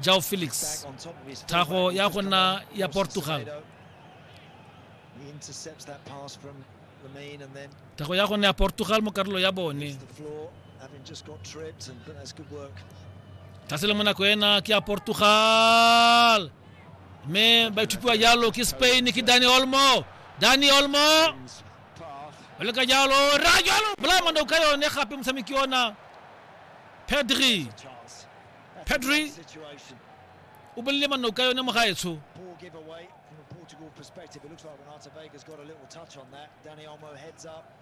João Felix, tlhago ya go nna ya Portugal. Tlhago ya go nna ya Portugal mo karolo ya bone. Tlhasele mo nako ena ke ya Portugal. Mme ba ithupiwa jalo ke Spain ke Dani Olmo. Dani Olmo. O leka jalo, ra jalo. Blamando ka yone gape motshameki ona. Pedri. Pedri o bolile manoka yone mo gaetsho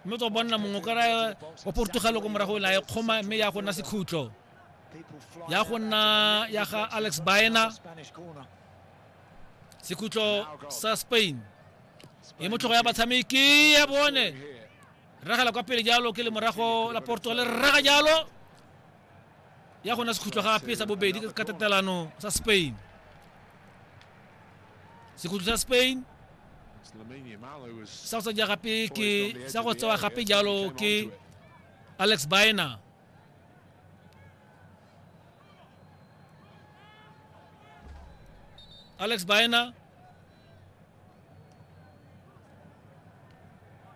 mme tsa bonna mongwe ka raya wa portugalo ko morago la e kgoma mme ya go nna sekhutlo ya go nna ya ga alex baena sekhutlo sa spain e motlhogo ya batshameki ya bone ragela kwa pele jalo ke le morago la portugal raga jalo ya gona sekhutlo gape sa bobedi ka tatelano sa spain sekhutlo sa spain sa go sa ja gape ke sa go tsewa gape jalo ke alex bina alex bina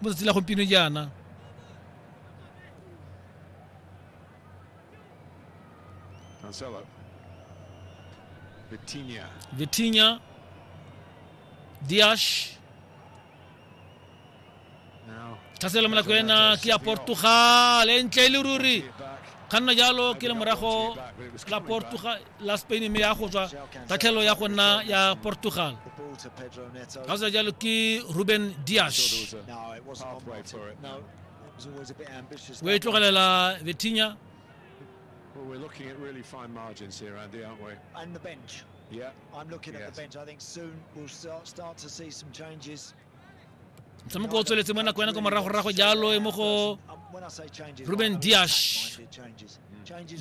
mo tsatsi la gompieno jaana Cancelo. Vitinha. Vitinha, Dias, Now, tlhaselo mo nako ena ke ya Portugal e ntle e le ruri back. kganna jalo ke le morago But it was la coming back. Portugal la spain mme ya go tswa tatlhelo ya go nna ya portugal ga sa jalo ke ruben dias o e tlogelela vetinya Well, we're looking at really fine margins here, Andy, aren't we? And the bench. Yeah. I'm looking yes. at the bench. I think soon we'll start, start to see some changes. motshameko o tsweletse mo nako ya nako moragorago jalo e mo go ruben diash